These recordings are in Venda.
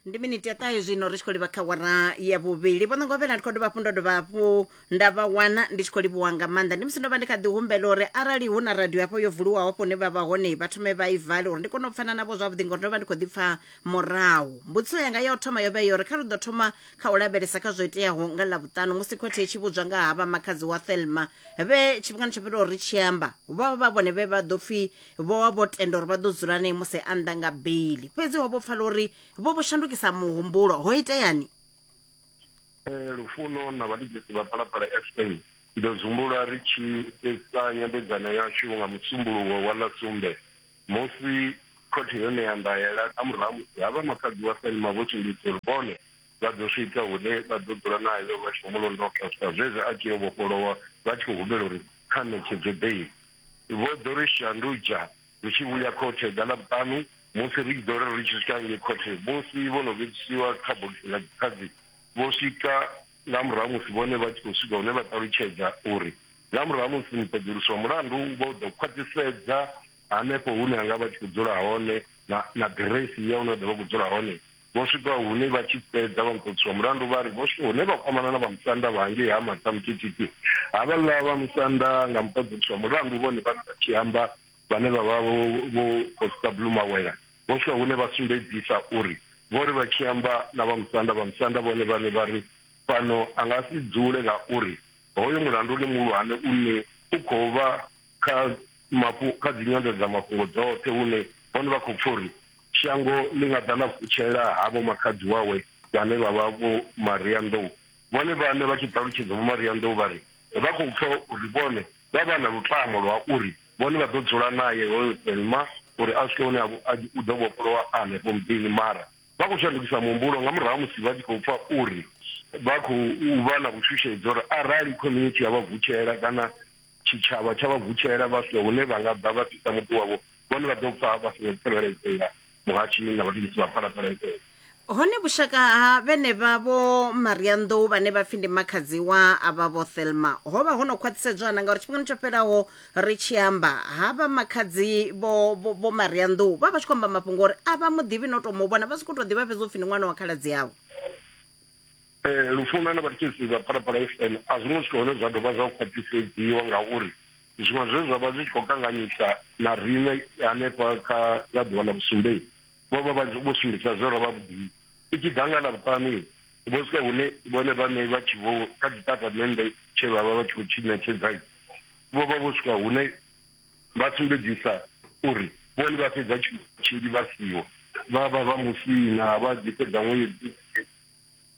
ndi miniti ya ṱahe zwino ri tshi khou livha kha wara ya vhuvhili vho ṋongovhela ndi khou dovha hafhu ndo dovha hafhu nda vha wana ndi tshi khou livhuwa nga maanḓa ndi musi ndo vha ndi kha ḓi humbela uri arali hu na radio hafho yo vuliwaho hafho hune vha vha hone vha thome vha i vale uri ndi kone u pfana navho zwavhuḓi ngori ndo vha ndi khou ḓi pfa murahu mbudziso yanga ya u thoma yo vha yo uri kha ri ḓo thoma kha u lavhelesa kha zwo iteaho nga ḽavhuṱanu musi khothe i tshi vhudzwa nga ha vha makhadzi wa thelma vhe tshifhingani tsho fhiraho ri tshi amba vha vha vhone vhe vha ḓo pfhi vho vha vho tenda uri vha ḓo dzula nae musi a nnḓa nga beli fhedzi ho vho pfala uri vho vho shandukisa muhumbulo ho iteani Eh, lufuno na vhaligisi vha phalaphala fa ndo zumbulwa ri tshi fhedza nyambedzano yashu nga musumbuluwo wa ḽa sumbe musi khothe yo ṋea ndaela nga murahu musi ha vha makhadzi wa selma vho tshimbidza uri vhone vha ḓo swika hune vha ḓo dzula nae lwa lwashu mulondotha swika zwezwo a tshi yo vhofholowa vha tshi khou humbela uri kha ṋetshedzwe beili Vho ḓo ri shandudza ri tshi vhuya khothe ḓa ḽa vhuṱanu musi ri tshi ḓo ri ri tshi swika ngei khothe musi vho no vhidzisiwa kha bogisi ḽa dzikhadzi vho swika nga murahu musi vhone vha tshi khou swika hune vha ṱalutshedza uri nga murahu musi muṱoḓulusi wa mulandu vho ḓo khwaṱhisedza hanefho hune anga vha tshi khou dzula hone na na ḓiresi ya hune vha ḓo vha khou dzula hone Vho swika hune vha tshi fhedza vha nkhotsi wa mulandu vha ri vho swika hune vha kwamana na vha musanda vha hangei ha Matamutititi. Havhaḽa vha musanda nga muṱoḓulusi wa mulandu vhone vhaṋe vha tshi amba vhane vha vha vho vho Constable Mawela vho swika hune vha sumbedzisa uri vho ri vha tshi amba na vha musanda vha musanda vhone vhaṋe vha ri fhano a nga si dzule ngauri hoyo mulandu ndi muhulwane une u khou vha kha mafhu kha dzi nyanḓadzamafhungo dzoṱhe hune vhone vha khou pfa uri shango ḽi nga ḓa ḽa vutshela havho makhadzi wawe vhane vha vha vho Maria Nḓou vhone vhane vha tshi ṱalutshedza vho Maria Nḓou vha ri vha khou pfa uri vhone vha vha na lutamo lwa uri vhone vha ḓo dzula naye hoyo Thelma uri a swike hune u ḓo vhofholowa a hanefho muḓini mara vha khou shandukisa muhumbulo nga murahu musi vha tshi khou pfa uri vha khou vha na vhushushedzi uri arali community ya vha vutshela kana Tshitshavha tsha vha vutshela vha sina hune vha nga ḓa vha fhisa muḓi wavho, vhone vha ḓo pfa vha songo tsireledzea, muhashi na vhatengisi vha phalaphala edzo. Hone vhushaka ha vhenevha vho Marianḓou vhane vha pfi ndi makhadzi wa avha vho Thelma ho vha ho no khwaṱhisedzwa na ngauri tshifhingani tsho fhelaho ri tshi amba havha makhadzi vho vho Marianḓou vha vha tshi khou amba mafhungo uri a vha muḓivhi no to mu vhona vha si khou tou ḓivha fhedzi upfi ndi ṅwana wa khaladzi avho. Ee, lufuno na vhatshisi vha Phalaphala FM a zwo ngo swika hune zwa dovha zwa khwaṱhisedziwa ngauri zwiṅwe zwe zwa vha zwi tshi khou kanganyisa na riṋe hanefha kha nga ḓuvha ḽa vhusumbei vho vha vha vho sumbedzisa zwe ra vha vhuḓini i tshi ḓa nga ḽa vhuṱanu vho swika hune vhone vhaṋe vha tshi vho kha tshitatamennde tshe vha vha vha tshi khou tshi ṋetshedza vho vha vho swika hune vha sumbedzisa uri vhone vha fhedza tshinzhi vha siho vha vha vha musina vha ḓi fhedza ṅwedzi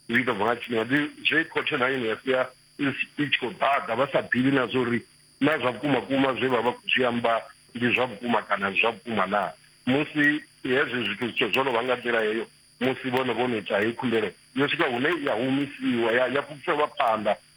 zwi ḓo bva nga tshifhinga ndi zwe khothe na yone ya sia i tshi khou ḓaḓa vha sa ḓivhi na zwa uri na zwa vhukuma kuma zwe vha vha khou zwi amba ndi zwa vhukuma kana zwa vhukuma na musi hezwi zwithu zwithu zwo no vha nga nḓila heyo musi vhone vho no ita heyi khumbelo yo swika hune ya humisiwa ya ya fhufhelwa phanḓa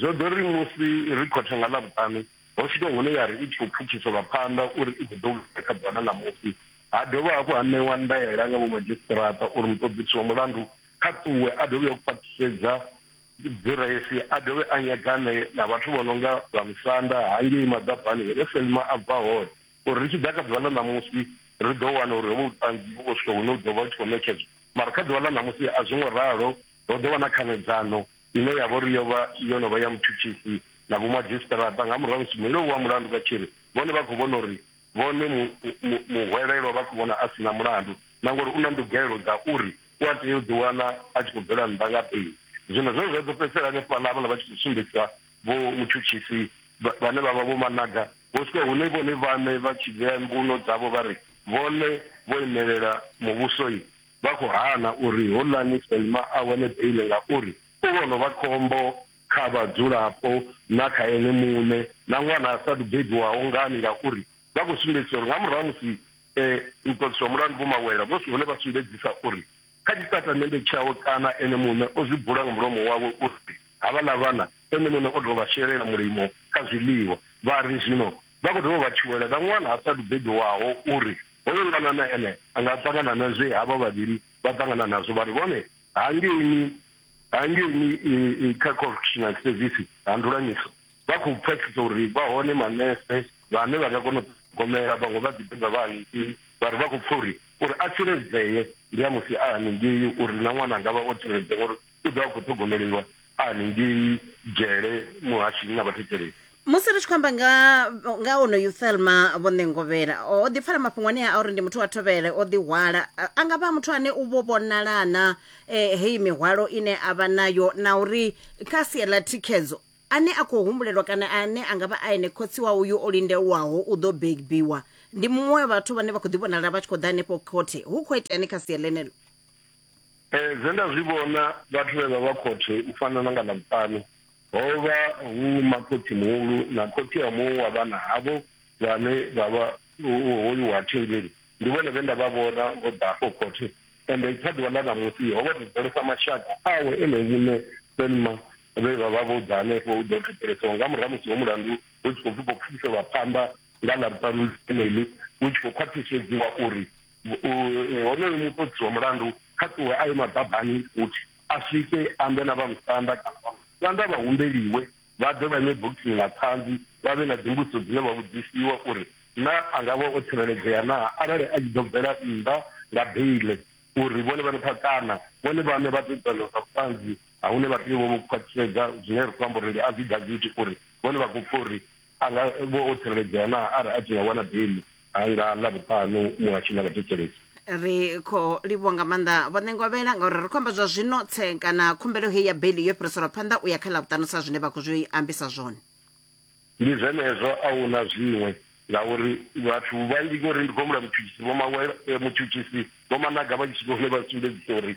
Zwo ḓo ri musi ri khothe nga Ḽavhuṱanu, ho swika hune ya ri i tshi khou pfukhiselwa phanḓa uri i ḓo ḓo vhuya kha ḓuvha ḽa ṋamusi. Ha dovha hafhu ha ṋewa ndaela nga vhomadzhisiṱiraṱa uri muṱoḓisi wa mulandu kha ṱuwe a ḓo vhuya u khwaṱhisedza ḓiresi a dovhe a nyagane na vhathu vho no nga vha musanda hangei maḓabani hune Selma a bva hone uri ri tshi ḓa kha ḓuvha ḽa ṋamusi ri ḓo wana uri hovho vhuṱanzi vhu khou swika hune u ḓo vha u tshi khou ṋetshedzwa mara kha ḓuvha ḽa ṋamusi a zwo ngo ralo, ho ḓo vha na khanedzano. ine ya vha uri yo vha yo no vha ya mutshutshisi na vhomadzhisiṱiraṱa nga murahu musi muleu wa mulandu vha tshi ri vhone vha khou vhona uri vhone muhwelelwa vha khou vhona a si na mulandu na ngori u na ndugelo dza uri u a tea u ḓiwana a tshi khou bvela nnḓa nga beli zwino zwo zwa ḓo fhedzisela hanefhaḽa havhala vha tshi khou sumbedzisa vho mutshutshisi vhane vha vha vho managa vho swika hune vhone vhaṋe vha tshi vhea mbuno dzavho vha ri vhone vho imelela muvhusoi vha khou hana uri houḽani Selma a wane beiḽi ngauri u vho no vha khombo kha vhadzulapo na kha ene muṋe na ṅwana a sa athu bebiwaho. Ngani? Ngauri vha khou sumbedzisa uri nga murahu ha musi muṱoliswa mulandu Vho Mawela vho si hone vha sumbedzisa uri kha tshitatamennde tshawe kana ene muṋe o zwi bula nga mulomo wawe uri havhaḽa vhana ene muṋe o tou vha shelela mulimo kha zwiḽiwa vha ri zwino Vha khou dovha vha tshuwela na ṅwana a sa athu bebiwaho uri hoyo ṅwana na ene a nga ṱangana na zwe havha vhavhili vha ṱangana nazwo vha ri vhone hangeini hangeini kha correctional service ha Ndulanyiso vha khou pfesesa uri vha hone manese vhane vha nga kona u ṱhogomela vhaṅwe vha ḓi beba vha hangeini vha ri vha khou pfa uri uri a tsireledzee ndi a musi a haningei uri na ṅwana a nga vha o tsireledzea ngori U ḓo vha khou ṱhogomeliwa a haningei dzhele muhashini na vhathetshelesi. Musi ri tshi khou amba nga nga onoyu Thelma Vho Ṋengovhela, o ḓi pfala mafhungo anea a uri ndi muthu wa thovhele, o ḓi hwala. A nga vha a muthu ane u vho vhonala na e, heyi mihwalo ine a vha nayo na uri kha sia ḽa thikhedzo ane a khou humbulelwa kana ane a nga vha a ene khotsi wa uyu o lindelwaho u ḓo bebiwa ndi muṅwe wa vhathu vhane vha khou ḓi vhonala vha tshi khou ḓa henefho khothe. Hu khou iteani kha sia ḽeneḽo? Zwe nda zwi vhona vhathu vhe vha vha khothe u fana na nga Ḽavhuṱanu ho vha hu makhotsi-muhulu na khotsi a muṅwe wa vhana havho vhane vha vha hoyu wa thengeli. Ndi vhone vhe nda vha vhona vho ḓa afho khothe, ende kha ḓuvha ḽa ṋamusi ho vha thetshelesa mashaka awe ene muṋe Selma vhe vha vha vho ḓa hanefho u ḓo thetshelesiwa nga murahu ha musi ho mulandu hu tshi khou pfi khou pfukiseliwa phanḓa nga Ḽavhuṱanu ḽeneḽi u tshi khou khwaṱhisedziwa uri honoyo muṱodzi wa mulandu kha ṱuwe a ye maḓabani futhi a swike ambe na vha musanda kana vha musanda vha humbeliwe vha ḓe vha ime bogini na ṱhanzi vha vhe na dzimbudziso dzine vha vhudzisiwa uri na a nga vha o tsireledzea naa arali a tshi ḓo bvela nnḓa nga beile uri vhone vhane pha kana vhone vhane vha ḓo tsana sa vhuṱanzi ha hune vha tea vho vho khwaṱhisedza zwine ri khou amba uri ndi affidavit uri vhone vha khou pfa uri A nga vha o tsireledzea naa arali a tshi nga wana beiḽi ha nga Ḽavhuṱanu muhasho na vhathetshelesi? Ri khou livhuwa nga maanḓa Vho Ṋengovhela ngauri ri khou amba zwa zwino tse kana khumbelo heyi ya beiḽi yo fhiriselwa phanḓa u ya kha Ḽavhuṱanu sa zwine vha khou zwi ambisa zwone. Ndi zwenezwo, a hu na zwiṅwe ngauri vhathu vhanzhi ngori ndi khou humbula mutshutshisi Vho Mawela, mutshutshisi Vho Managa vha tshi swika hune vha sumbedzisa uri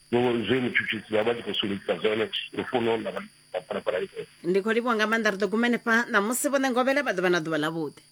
zwe mutshutshisi vha vha tshi khou sumbedzisa zwone lufuno ḽa vhaphalaphala ife ndi khou livhuwa nga maanḓa ri ḓo guma henefha ṋamusi vhoṋe ngovhela vha ḓo vha na ḓuvha ḽavhuḓi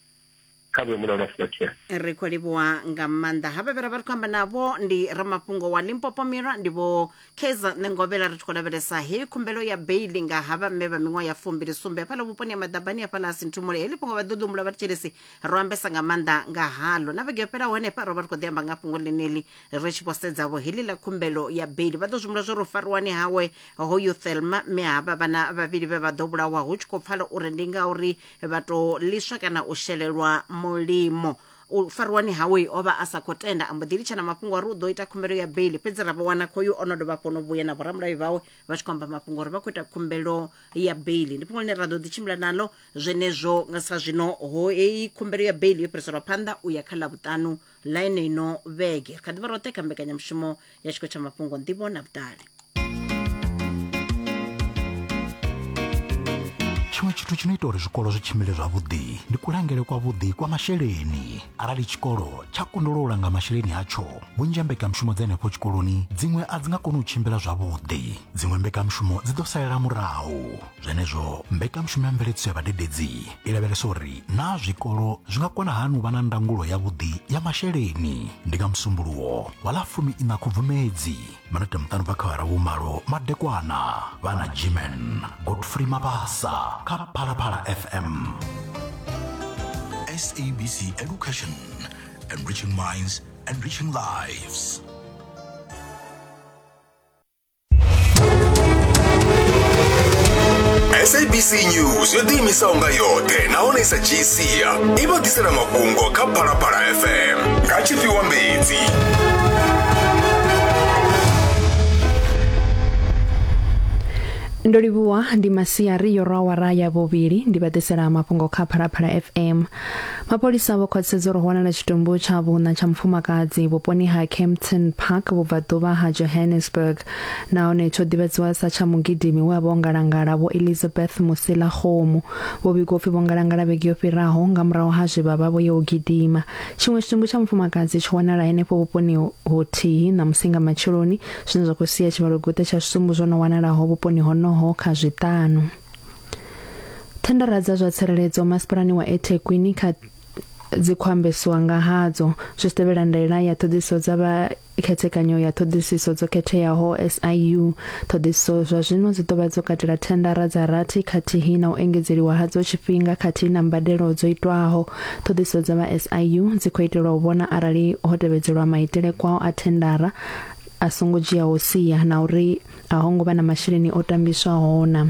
kha vhe mulalo wa silakhea ri khou livhuwa nga maanḓa ha vhavhera vha ri khou amba navho ndi ramafhungo wa limpopo mirwa ndi vho kaizer ṋengovhela ri tshi khou lavhelesa heyi khumbelo ya beili nga ha vhamme vha miṅwaha ya fumbili sumbe hafhaḽa vhuponi ha maḓabani hafhaḽa a sinthumule heḽi fhungo vha ḓo ḓi humbula vha ri tshelesi ro ambesa nga maanḓa nga halo na vhege yo fhelaho henefha ro vha ri khou ḓi amba nga fhungo ḽeneḽi ri tshi vho sedzavho heḽi ḽa khumbelo ya beli vha ḓo zwi humbula zwo ri u fariwani hawe hoyu thelma mme havha vhana vhavhili vhe vha ḓo vhulawa hu tshi khou pfala uri ndi ngauri vha tou ḽiswa kana u shelelwa mulimo u fariwani hawe o vha a sa khou tenda a mbo ḓi litsha na mafhungo uri u ḓo ita khumbelo ya beli fhedzi ra vha wana khoyu o no dovha hafhu no vhuya na vhoramulayo vhawe vha tshi khou amba mafhungo uri vha khou ita khumbelo ya beli ndi fhungo ḽine ra ḓo ḓi tshimbila naḽo zwenezwo nga sa zwino ho heyi khumbelo ya beli yo fhiriselwa phanḓa u ya kha ḽa vhuṱanu ḽa yeneyi no vhege ri kha ḓi vha roṱhe kha mbekanyamushumo ya tshiko tsha mafhungo nḓivho na vhuṱali tshiṅwe tshithu tshi no ita uri zwikolo zwi tshimbile zwavhuḓi ndi kulangele kwavhuḓi kwa masheleni arali tshikolo tsha kundolo u langa masheleni atsho vhunzhi ha mbekanyamushumo dza henefho tshikoloni dziṅwe a dzi nga koni u tshimbila zwavhuḓi dziṅwe mbekanyamushumo dzi ḓo salela murahu zwenezwo mbekanyamushumo ya mveledziso ya vhadededzi i lavhelesa uri naa zwikolo zwi nga kona hani u vha na ndangulo yavhuḓi ya masheleni ndi nga musumbuluwo wa ḽa fumi ina khubvumedzi minete muṱanu bva kha hara vhumalo madekwana vha na jimen godfrey mabasa kha phalaphala fm SABC Education, enriching minds, enriching lives. sabc news yo ḓiimisaho nga yoṱhe nahone sa gcia i vha ḓisela mafhungo kha phalaphala fm nga tshifhiwa mbedzi ndo livhuwa ndi masiari yo rwa wara ya vhuvhili ndi vha ḓisela mafhungo kha phalaphala fm Mapholisa vho khwaṱhisedza uri ho wanala tshitumbu tsha vhuṋa tsha mufumakadzi vhuponi ha Kempton Park vhubvaḓuvha ha Johannesburg nahone tsho ḓivhadziwa sa tsha mugidimi we a vha o ngalangala vho Elizabeth Musila Kgomo. Vho vhigwa upfi vho ngalangala vhege yo fhiraho nga murahu ha zwe vha vha vho ya u gidima. Tshiṅwe tshitumbu tsha mufumakadzi tsho wanala henefho vhuponi huthihi na musinga matsheloni zwine zwa khou sia tshivhalo guṱe tsha zwitumbu zwo no wanalaho vhuponi honoho kha zwiṱanu. thendara dza zwa tsireledzo masipalani wa ethekwini kha dzi khou ambesiwa nga hadzo zwi tshi tevhela ndaela ya ṱhoḓisiso dza vha khethekanyo ya ṱhoḓisiso dzo khetheaho SIU ṱhoḓisiso zwa zwino dzi ḓovha dzo katela thendara dza rathi khathihi na u engedzeliwa hadzo tshifhinga khathihi na mbadelo dzo itwaho ṱhoḓisiso dza vha SIU dzi khou itelwa u vhona arali ho tevhedzelwa maitele kwao a thendara a songo dzhiaho sia na uri a ho ngo vha na masheleni o tambiswaho na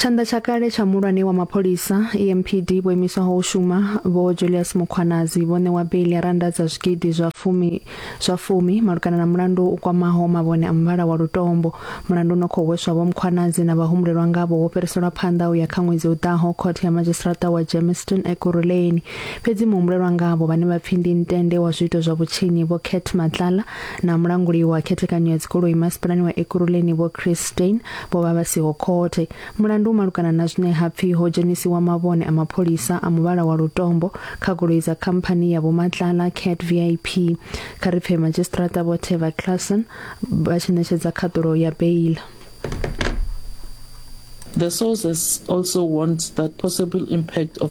Tshanḓa tsha kale tsha mulwane wa mapholisa EMPD vho imiswaho u shuma vho Julius Mukhwanazi vho ṋewa beli ya randa dza zwigidi zwa fumi zwa fumi malugana na mulandu u kwamaho mavhone a muvhala wa lutombo mulandu no khou hweswa vho Mukhwanazi na vhahumbulelwa ngavho wo fhiriselwa phanḓa u ya kha ṅwedzi u ḓaho khothe ya magistrata wa Germiston Ekurhuleni Fhedzi muhumbulelwa ngavho vhane vha pfi ndi ntende wa zwiito zwa vhutshinyi vho Kurt Matlala na mulanguli wa khethekanyo ya dzigoloi masipalani wa Ekurhuleni vho Chris Steyn vho vha vha siho khothe. Mulandu u malugana na zwine ha pfi ho dzhenisiwa mavhone a mapholisa a muvhala wa lutombo kha goloi dza khamphani ya Vho Matlala Cat VIP. Kha ri pfe Madzhisiṱiraṱa Vho Teva Claasen vha tshi ṋetshedza khaṱulo ya beila. The sources also warned that possible impact of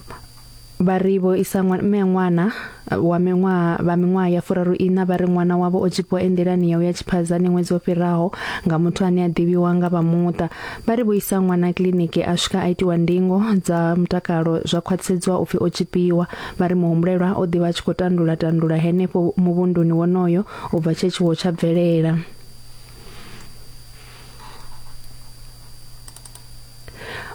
vha ri vho isa mme ṅwana wa miṅwaha vha miṅwaha ya furaru ina vha ri ṅwana wavho o tshipiwa enḓilani ya u ya tshiphadzani ṅwedzi wo fhiraho nga muthu ane a ḓivhiwa nga vha muṱa vha ri vho isa ṅwana kiḽiniki a swika a itiwa ndingo dza mutakalo zwa khwaṱhisedziwa upfi o tshipiwa vha ri muhumbulelwa o ḓivha a tshi khou tandula tandula henefho muvhunduni wonoyo u bva tshe tshiwo tsha bvelela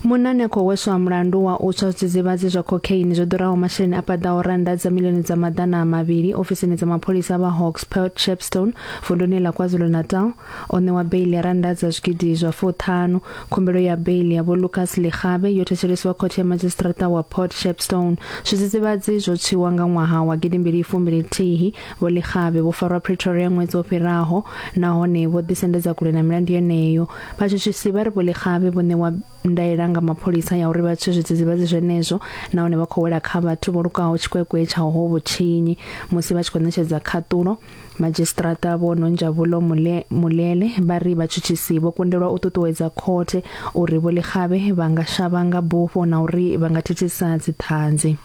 Munane khou hweswa mulandu wa u tswa zwidzidzivhadzi zwa cocaine zwo ḓuraho masheleni a paḓaho rannda dza milioni dza maḓana a mavhili ofisini dza mapholisa vha Hawks Port Shepstone vunduni ḽa KwaZulu-Natal o ṋewa beili ya rannda dza zwigidi zwa fuṱhanu. Khumbelo ya beili ya Vho Lucas Likgabe yo thetshelesiwa khothe ya madzhisiṱiraṱa wa Port Shepstone. Zwidzidzivhadzi zwo tswiwa nga ṅwaha wa gidi mbili fumbili thihi. Vho Likgabe vho farwa Pretoria ṅwedzi wo fhiraho nahone vho ḓisendedza kule na milandu yeneyo. vhatshutshisi vha ri vhoḽixavhe vho ṋewa ndaela nga mapholisa ya uri vha tswe zwidzidzivhadzi zwenezwo nahone vha khou wela kha vhathu vho lukaho tshikwekwe tsha ho vhutshinyi musi vha tshi khou ṋetshedza khaṱulo madzhisiṱiraṱa vho nonjavulo mulele vha ri vhatshutshisi vho kundelwa u ṱuṱuwedza khothe uri vhoḽixavhe vha nga shavha nga bufho na uri vha nga thithisa dziṱhanzi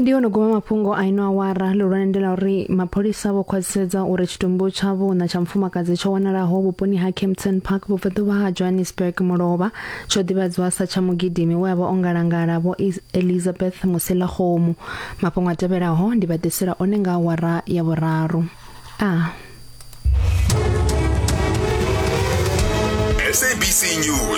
ndi ono guma mafhungo a ino awara lihulwane ndi la uri mapholisa vho khwaṱhisedza uri tshitumbu tsha vhuna tsha mufumakadzi tsho wanalaho vhuponi ha Kempton Park vhubvaḓuvha ha Johannesburg mulovha tsho ḓivhadzwa sa tsha mugidimi we a vha o ngalangala vho Elizabeth Musilakgomu mafhungo a tevhelaho ndi vha ḓisela one nga awara ya vhuraru a SABC News